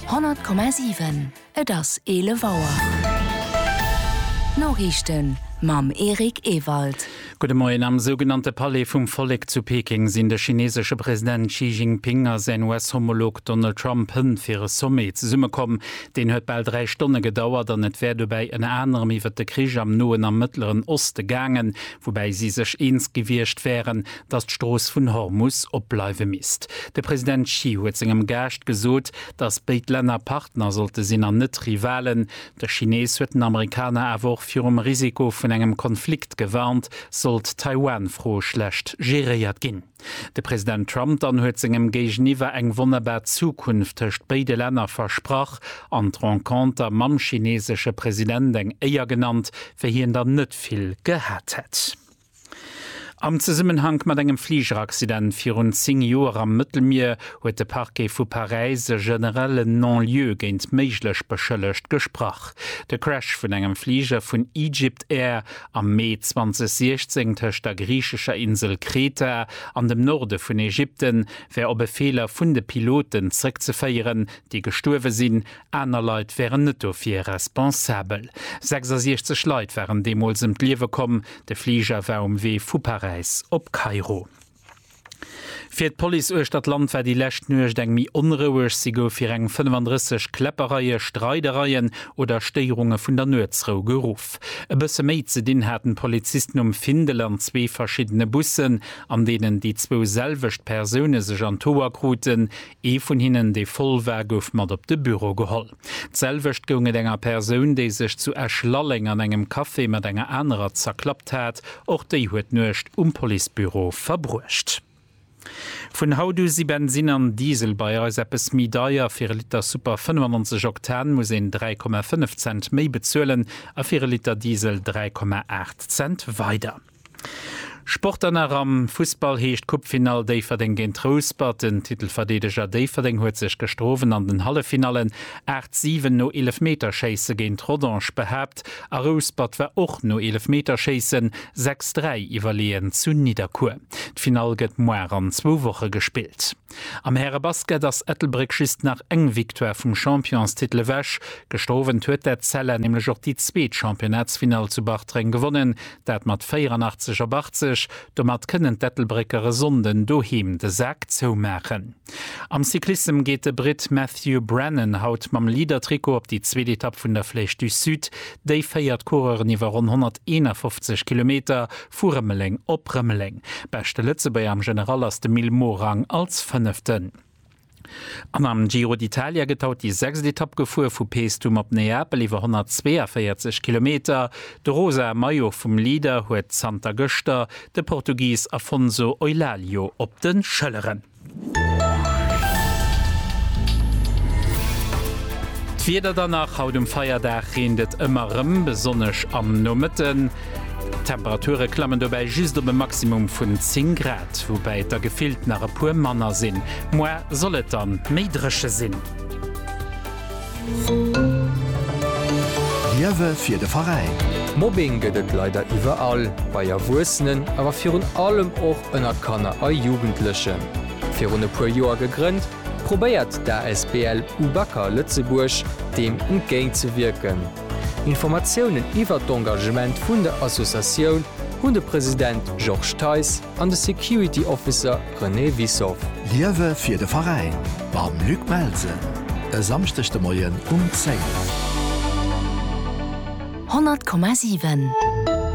100,7 Et ass 11 Auer. D'Noriichten mam Eric Ewald. Gudde Moien. Am sougenannte Palais vum Vollek zu Peking sinn de chineesesche President Xi Jinping a säin US-Homolog Donald Trump hënt fir e Sommet zesummekomm. Deen huet bal dräi Stonne gedauert an et wär dobäi ënner anerem iwwert de Krich am Noen a Mëttleren Oste gaangen, woubäi si sech eens gewiescht wären, datt d'Strooss vun Hormus opbleiwe misst. De President Xi huet sengem Gaascht gesot, datt béid Länner Partner sollte sinn an net Rivalen. De Chinees huet den Amerikaner awer och virum Risiko vun engem Konflikt gewarnt, sollt d'Taiwan-Fro schlecht geréiert ginn. De President Trump dann huet sengem Géigeniwwer eng wonnerbar Zukunft tëscht béide Länner versprach an d'Renconter mam chineesesche President eng Éier genannt, wéi hien der net vill gehat hätt. Am Zesummenhank mat engem Fligeraccident virun 10 Joer am Mëttelmier huet de Parquet vu Paräis e generelle Non-lieu géint méiglech Beschëllegt gesprach. De Crash vun engem Fliger vun Egypt Air am Mee 2016 tëscht der griichescher Insel Kreta an dem Norde vun Ägypten wär op e Feeler vun de Piloten zrëckzeféieren, déi gestuerwe sinn, Aner Leit wären net dofir responsabel. 66 Leit waren deemools ëm d'Liewe komm. De Fliger war um Wee vu Paräis op Kairo. Fir d'Police uechter d'Land war déi lescht Nuecht eng méi onroueg. Si gouf fir eng 35 Kläppereie, Streidereien oder Stéierunge vun der Nuetsrou geruff. E bësse méi ze dinn haten d'Polizisten um Findel an zwee verschiddene Bussen, an deenen déi zwou selwecht Persoune sech an d'Hoer kruten. Ee vun hinnen, dee voll war, gouf mat op de Büro geholl. D'selwecht goung et enger Persoun, déi sech zu Esch-Lalleng an engem Café mat enger anerer zerklappt hat. Och déi huet d'Nuecht um Policebüro verbruecht. Vun haut u si Bensinn an Diesel bei eis eppes méi deier. Fir e Liter Super 95 Oktan muss een 3,5 Cent méi bezuelen a fir e Liter Diesel 3,8 Cent weider. Sport dann nach am Fussball heescht Coupefinall Déifferdeng géint Rouspert. Den Titelverdeedeger Déifferdeng huet sech gëschter Owend an den Halleffinallen 8, 7 no Eelefmeterschéisse géint Rodange behaapt a Rouspert war och no Eelefmeterschéissen 6, 3 iwwerleeën zu Nidderkuer. D'Finall gëtt moar an zwou Woche gespillt. Am Härebasket ass Ettelbréck just nach eng Victoire vum Championstitel ewech. Gëschter Owend huet d'Etzella nämlech och déi zweet Championnatsfinall zu Bartreng gewonnen, dat mat 84 op 80. Domat kënnen d'Ettelbrécker e Sonnden doheem de Sak zoumaachen. Am Cyclissem geet de Britt Matthew Brennan haut mam Leader-Trikot op déi zweet Etapp vun der Flèche du Sud. Déi féiert d'Coureuren iwwer ronn 151 Kilometer Vu Rëmeleng op Rëmeleng. Beschte Lëtzebuerger am General ass de Mil Morang als Fënneften. An am Giro d'Italia gëtt haut déi sechst Etapp gefuer, vu Paestum op Neapel, iwwer 142 Kilometer. De rosae Maillot vum Leader huet zanter gëschter de Portugis Afonso Eulálio op de Schëlleren. D'Wieder dann nach, Haut um Feierdag reent et ëmmer erëm, besonnesch am Nomëtten. D'Temperature klammen dobäi just op e Maximum vun 10 Grad, woubäi et der gefillt nach e puer manner sinn. Moar soll et dann méi dréche sinn. Liewe fir de Veräin! Mobbing gëtt et leider iwwerall, bei Erwuessenen, awer virun allem och ënnert Kanner a Jugendlechen. Virun e puer Joer gegrënnt, probéiert d'ASBL UBAKA Lëtzebuerg deem entgéint ze wierken. Informatiounen iwwert d'Engagement vun der Associatioun hunn de President Georges Theis, an de Security Officer René Wissow. Liewe fir de Veräin mam Luc Melsen e Samschdeg de Moien um 10. 100,7.